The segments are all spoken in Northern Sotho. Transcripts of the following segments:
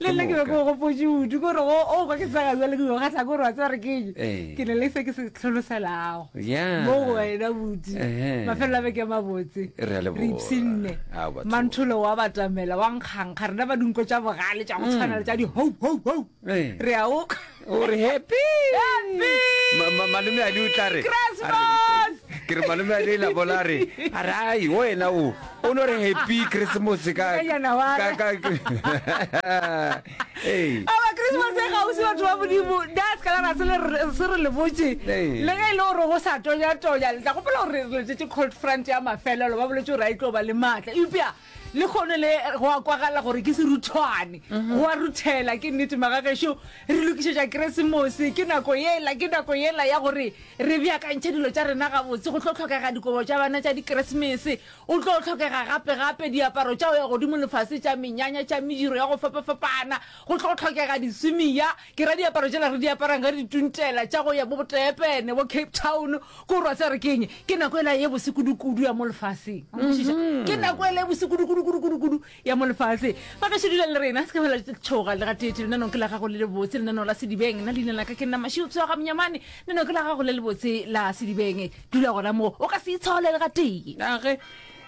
le nna ke be ke o gopotse udu kore go o kwa ke tsega jale ke yoga sa kore wa tseba re keng eh. ke ne le se ke se tlholoselago mo go wena buti mafelelo a beke mabotse re ipsinne mantholo wa batamela wa nkgankga rena ba dinko tša bogale tša go tshwana le tša di-hope hope hope eh. re a o o re happy Ma- ma- malome a le o tla re a re- ke re malome a le la bola a re a re ai o ena o o no re happy christmas ka Ka January. ka- ka- ka- Hey. aba christmas e gausi batho ba modimo das ka lara se le re- se re le botse Ee. le ge e le gore go sa tonyatonya le tla gopela gore re letšetše cold front ya mafelelo ba boletse gore a e tlo ba le maatla eupša le kgono le go a kwagala gore ke seruthwane mhm. go a ruthela ke nnete magagešo re lokišetša keresemose ke nako yela ke nako yela ya gore re beakantšhe dilo tša rena gabotse go tlo tlhokega dikobo tša bana tša dikeresemese o tlo tlhokega gape-gape diaparo tša go ya godimo lefase tša menyanya tša mediro ya go fapa-fapana go tlo tlhokega diswimiya Ke ra diaparo tšela re di aparang ga re dituntela tša go ya bo botepene bo cape town ko rwa tse re keng ke nako e la ye bose kudu-kudu ya mo lefaseng Nkwešiša? Mhm. ke nako e la ye bose kudu-kudu-kudu-kudu-kudu ya mo lefaseng ba gešo dula le rena se ka fela tšhoga le gateetše lenanong ke la gago le le botse lenanong la sedibeng nna leina la ka ke nna mašio pswaga monyamane lenanong ke la gago le le botse la sedibeng dula gona moo o ka se itshole le gatee nage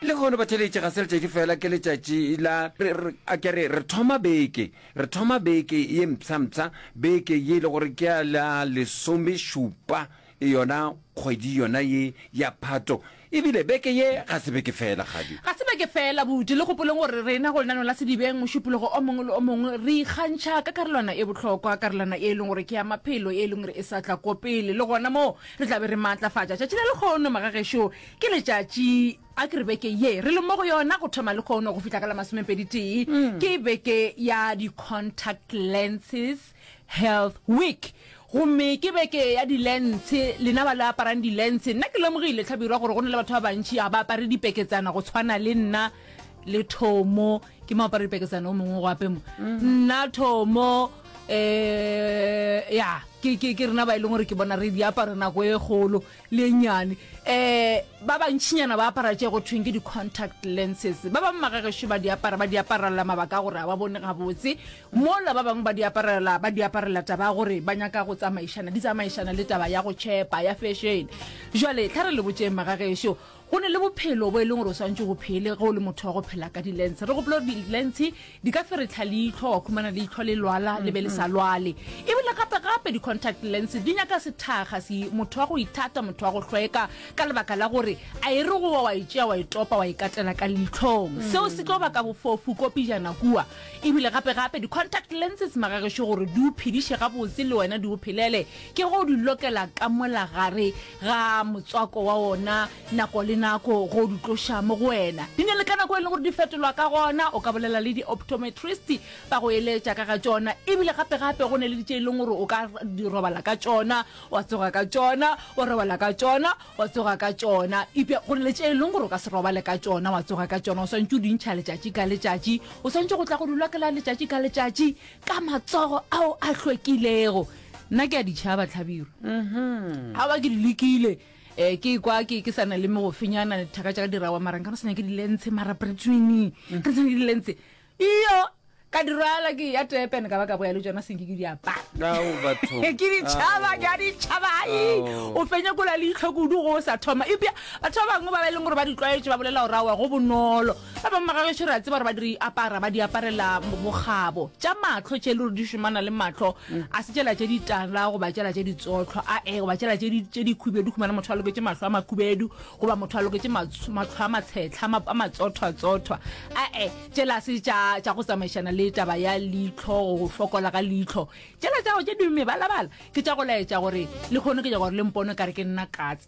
le kgono batheletše ga se letšatši fela ke letšatši la re- re- a ke re re thoma beke Re thoma beke ye mpsha-mpsha beke ye e le gore ke ya la lesomešupa yona kgwedi yona ye ya Phato. E bile beke ye ga se beke fela, Kgadi. Ga se beke fela, Buti. Le gopoleng gore rena go lenaneo la Sedibeng mošupologo o mongwe le o mongwe re ikgantšha ka karolwana e bohlokwa, karolwana ye e leng gore ke ya maphelo ye e leng gore e sa tla ko pele. Le gona moo re tla be re maatlafatša tšatši la lekgono, magagešo. Ke letšatši. A ke re beke ye re le mo go yona go thoma lekgono go fihla ka la masomepedi-tee ke beke ya di-contact lenses health week gomme ke beke ya di-lense. Lena ba le aparang di-lense, nna ke lemogile, Tlhabirwa, gore go na le batho ba bantši ga ba apare dipeketsana go tshwana le nna le Thomo. Ke mo apara dipeketsana o mongwe go ape mo. Nna, Thomo, um ya ke rena ba e leng gore ke bona re di apara nako e kgolo. lennyane um ba bantšhinyana ba apara tše go thweng ke di-contact lenses ba bangwe magagešo ba di apara ba di aparela mabaka a gore ga ba bone gabotse mola ba bangwe ba di aparela ba di aparela taba ya gore ba nyaka go tsamaišana di tsamaišana le taba ya go tšhepa ya fešene jale tlha re le botseng magagešo Go na le bophelo bo e leng gore o swantše go phele ge o le motho wa go phela ka dilentshe. Re gopole gore dilentshe di ka feretlha leitlho, wa khumana leitlho le lwala le be le sa lwale. Ebile gape-gape di-contact lense di nyaka sethakga se, motho wa go ithata, motho wa go hlweka ka lebaka la gore a e re go wa wa e tšea wa e topa wa e katela ka leitlhong. Seo se tlo baka bofofu ko pejana kua. Ebile gape-gape di-contact lenses magagešo gore di o phediše gabotse le wena di o phelele ke ge o di lokela ka mola gare ga motswako wa ona nako le nako go di tloša mo go wena di ne le ka nako e leng gore di fetolwa ka gona o ka bolela le di-optometrist ba go eletša ka ga tšona ebile gape gape go ne le ditše e leng gore o ka di robala ka tšona wa tsoga ka tšona wa robala ka tšona wa tsoga ka tšona epe go ne le tše e leng gore o ka se robale ka tšona wa tsoga ka tšona o swantse o dintšha letšatši ka letšatši o swantse go tla go dulwa ke la letšatši ka letšatši ka matsogo ao a hlwekilego nna ke a ditšhaba tlhabiro mm-hmm. a ba ke di lekile um ke kwa ke ke sana le megofenyana thaka tša ka dirawa marang ka no sanya ke dilentshe mara bretswini mm. ka sanya ke dilentshe iyo ka dirwala ke ya tepen ka ba ka boya le tsona senke ke diapaake ditšhaba ke a ditšhaba ai o fenye kola leitlho kudu go o sa thoma ebja batho ba bangwe ba ba e leng gore ba ditlwaetše ba bolela gore awa go bonolo Ba bangwe ba gagešo re a tseba gore ba di apara ba di aparela bokgabo tša mahlo tše le re di šomana le mahlo a se tšela tše ditala goba tšela tše ditsotlho a e goba tšela tše dikhubedu khumana motho a loketše mahlo a makhubedu goba motho a loketše mahlo a matshetlha a matsothwatsothwa a e tšela se tša go tsamaišana le taba ya leitlho go fokola ga leitlho tšela tša go tše di mebalabala ke tša go laetša gore le kgone ke tša gore le mpone kare ke nna katse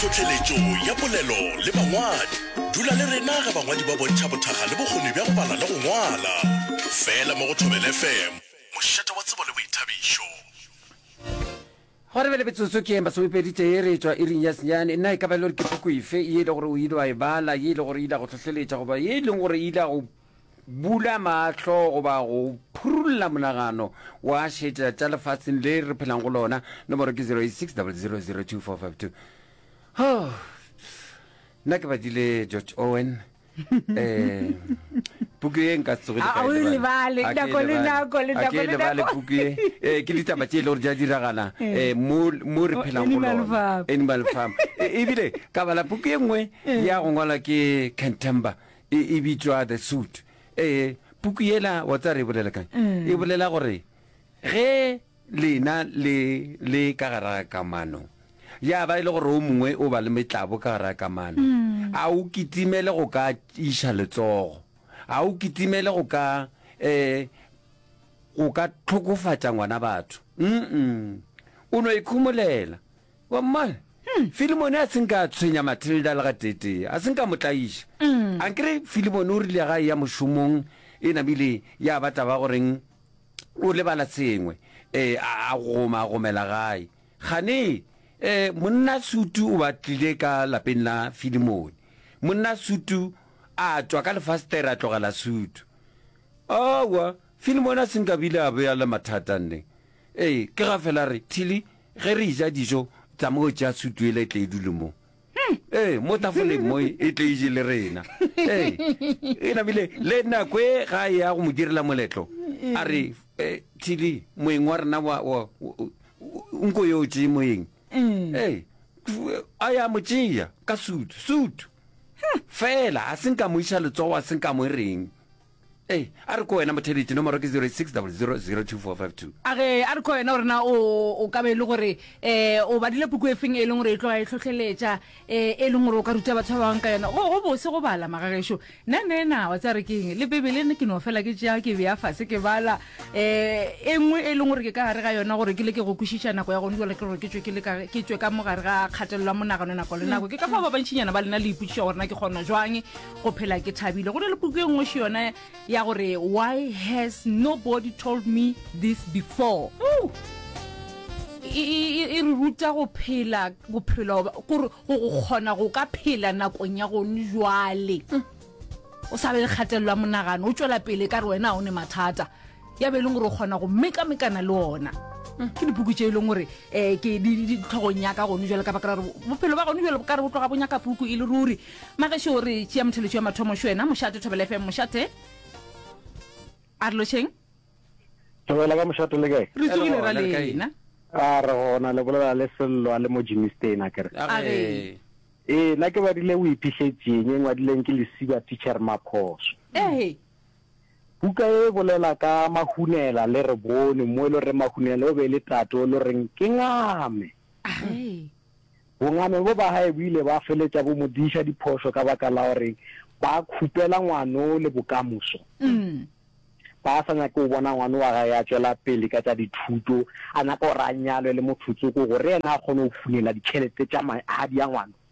Tlhohleletšo ya polelo le bangwadi. Dula le rena ge bangwadi ba bontšha bothakga le bokgoni bja go bala le go ngwala. Fela mo go Thobela FM, mošate wa tsebo le boithabišo. Gwa re bjale metsotso ke ye masomepedi tee re etšwa iring ya senyane. Na e ka ba e le gore ke puku efe ye e le gore o ile wa e bala, ye e le gore e ile ya go hlohleletša goba ye e leng gore e ile ya go bula mahlo goba go phurulla monagano wa šetša tša lefaseng le re phelang go lona nomoro ke 0860002452 oh, nna ke badile george owen puku ye nka tsogelebale puku ye eh, ke ditaba tse e le gore di a diragala eh. Eh, mo re phelang go lona animal farm ebile ka bala puku ye nngwe ya go ngwala ke cantember E, e bitšwa The Suit. Ee, puku yela wa tsa re e bolela kang? E bolela gore ge lena le le ka gara ga kamano, ya ba e le gore o mongwe o ba le metlabo ka gara ga kamano, a o kitimele go ka iša letsogo, a o kitimele go ka um go ka tlhokofatša ngwana batho. Mm-mm. O no ikhomolela. Wa mmala? Filimone a se nka a tshwenya Matilda le gateetee, a se nka mo tlaiša. A nkere Filimone o rile ga e ya mošomong e namile ya ba taba goreng o lebala sengwe, a goma a gomela gae. Kgane monna Sutu o ba tlile ka lapeng la Filimone. Monna Sutu a tšwa ka lefastere a tlogela Sutu. Aowa, Filimone a se nka bile a be a le mathata nne. Ee, ke ga fela re, Tilly, Ge re eja dijo tla mo tšea sutu yela e tle e dule mo. Ee, mo tafoleng mo e tle e je le rena. Ee, e namile le nako e ga e ya go mo direla moletlo. A re, Thili, moeng wa rena wa, wa, nko yo tšee moeng. Ee, a ya mo tšea ka sutu, sutu. Fela, a se nka mo iša letsogo, a se nka mo reng. Ee, a re ko wena Mothebiti, nomoro ke 0600024522. A ge a re ko wena gore na o o ka be e le gore um o badile puku e feng e leng gore e tloga e tlhohleletša um e leng gore o ka ruta batho ba bangwe ka yona. Go go bose go bala, magagešo. Nna nna ena wa tseba re ke eng, le Bibele ne ke no fela ke tšea ke bea fase ke bala um e nngwe e leng gore ke ka gare ga yona gore ke leke go kwešiša nako ya gone joale ke gore ke tšwe ke le ka ke tšwe ka mo gare ga kgatelelo ya monagano nako le nako. Ke ka fao ba bantšinyana ba lena le ipotšiša gore na ke kgona jwang go phela ke thabile go na le puku e nngweši yona ya gore why has nobody told me this before e, e, e, e re ruta go phela bophelo gore go kgona go ka phela nakong ya gone jwale o sa be le kgatelelo ya monagano o tšwela pele ka re wena ga o ne mathata ya be e leng gore o kgona go mekamekana le ona ke dipuku tše e leng gore um ke ditlhogong yaka gone jalo ka baka la gore bophelo ba gone jalo bo ka re bo tloga bo nyaka puku e le ruri magesho o re tšea motheletšo ya mathomo šo wena mošate thobela fm mošate a re lošeng thobela ka mošate le kae re tsogile ra lena a re gona le bolela le sello a le mo jimistena kere ee nna ke badile o iphitlhetseng e ngwadileng ke lesiba teacher maphoso ee Buka ye e bolela ka Mahunela le re bone mo e le gore Mahunela o be le tate o le reng ke ngame. Bongame bo ba gae bo ile ba feletša bo mo diša diphošo ka baka la gore ba khupela ngwano le bokamoso. Ba sa nyake go bona ngwano wa gae a tšwela pele ka tša dithuto, a nyaka gore a nyalwe le mothotsoko gore ena a kgone go funela ditšhelete tša magadi a ngwano.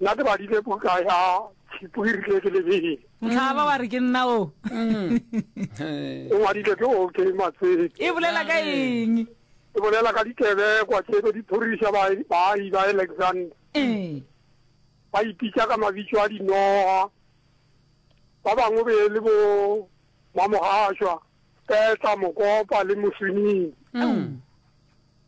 nna ke badile buka ya tshipo e rile ke lebele ntlhaba wa re ke nna o e ngwadile ke o ke matsete e bolela ka eng e bolela ka dikebekwa tse be di thorisa baahi ba alexander ee ba ipitsa ka mabitso a dinoga ba bangwe be e le bo mamogaswa petla mokopa le moswinini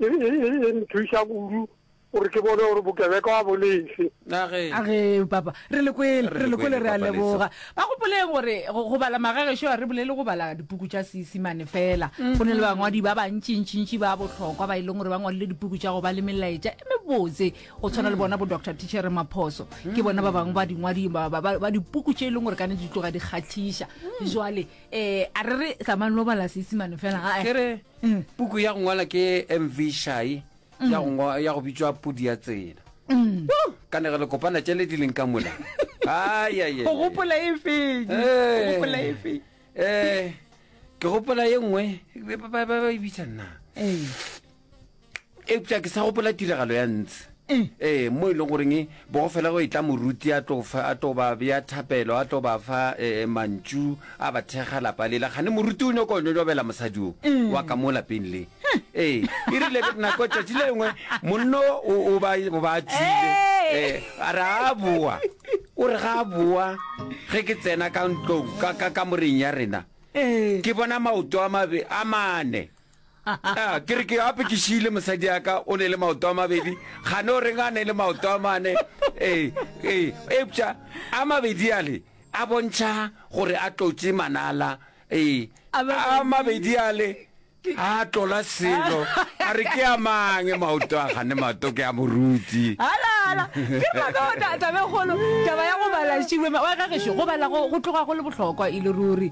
e, e, e, e nthuša kudu gore ke bone gore bokebeka wa bone efe a ge a ge papa re le kwele Re re le le kwele kwele, re a Papa Leso. leboga ba gopoleng gore go go bala magagešo a re bolele go bala dipuku tša seesimane fela go ne le bangwadi ba bantšintšintši ba bohlokwa ba e leng gore ba ngwadile dipuku tša go ba le melaetša e mebotse go tshwana le bona bo dr tichere maphoso ke bona ba bangwe ba dingwadi ba- ba ba- ba dipuku tše e leng gore ka ne di tloga di kgatlhiša jwale um a re re tsamane lo bala seesimane fela ae. Ke re- Mm. Puku ya go ngwala ke MV Shai ya go ngwa- ya go bitšwa Pudi ya tsela. Mm. Woo, Ka ne re le kopana tšele di leng ka mola. Ai, ai, ai, go ai. gopola e feng go Eh. gopola e feng Eh, ke gopola ye nngwe ba- ba ba- ba e bitša nna. Ee. eupša ke sa gopola tiragalo ya ntse mm. ee mo e leng goreng bogo fela go e tla moruti a tlo fa a tlo ba bea thapelo a tlo ba fa ee mantšu a ba thekga lapa lela gane moruti o nyoko nyonyobela mosadi o mm. wa ka mo lapeng le ee e rile nako tšatši le lengwe monno o ba tsile ee a re a boa o re ga a boa ge ke tsena ka ntlong ka moreng ya rena ke bona maoto a mabe a mane Ah, ke re ke gape ke šiile mosadi yaka o ne le maoto a mabedi gane o reng a ne le maoto a mane ee ee epša a mabedi ale a bontšha gore a tlotše manala ee A mabedi. a mabedi ale a tlola selo a re ke a mang maoto a gane maoto ke a moruti halala ke maka tabegolo taba ya go bala šiwe wa gagešo go bala go go tloga go le bohlokwa e le ruri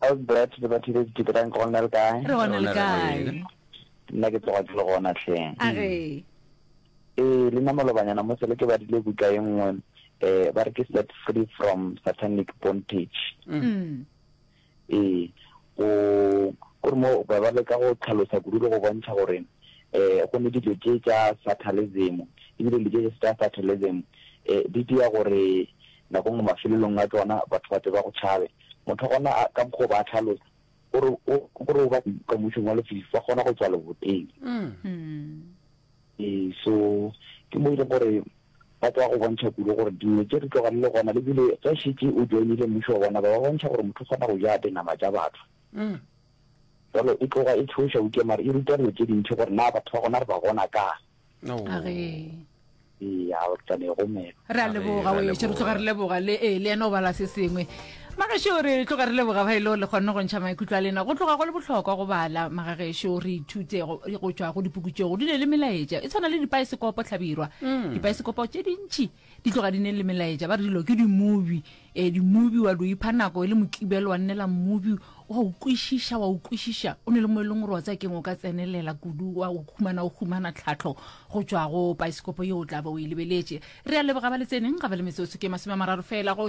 How's Brett le batho le diteterang ke gona le kae? Re gona le kae? Nna ke tloga ke le gona tlheng. A re. Eh, le nna malobanyana mo sele ke badile buka e nngwe eh ba re ke set free from satanic bondage. Mm. Eh, go gore mo ba ba leka go tlhalosa kudu le go bontšha gore eh go ne dilo tše tša satalism ebile dilo tše tša satalism eh di dira gore nako nngwe mafelelong a tsona batho ba tse ba go tšhabe Motho gona a, ka mokgwa o ba a tlhalosa, o re, o, o re o ba ka mmušong wa lefifi, ba kgona go tšwa leboteng. Ee, so, ke mo e leng gore ba tloga go bontšha kudu gore dingwe tše re tloga le le gona, le bile ge šetše o joinile mmušo wa bona, ba ba bontšha gore motho o kgona go ja dinama tša batho. Jalo e tloga e tšhoša, eupša mare e ruta dilo tše dintši gore na batho ba gona re ba bona kang. agee re a leboga oešo re tloga re leboga le ee le ena o bala se sengwe magešo re tloga re leboga ba e leo le kgonne go ntšha maikutlo a lena go tloga go le bohlokwa go bala magagešo re ithute go tšwa go dipukutšego di ne le melaetša e tshwana le dipaesekopo tlhabirwa mm. dipaesekopo tše dintšhi Di tloga di ne le melaetša ba re dilo ke di-movie. Ee, di-movie wa di o ipha nako e le Mokibelo wa nnela movie, wa o kwešiša, wa o kwešiša. O ne le mo e leng gore wa tsaya keng o ka tsenelela kudu wa o humana, o humana tlhahlo go tšwa go paesekopo yeo o tla be o e lebeletše. Re a leboga ba le tseneng, ga ba le metsotso ke masome a mararo feela go tšwa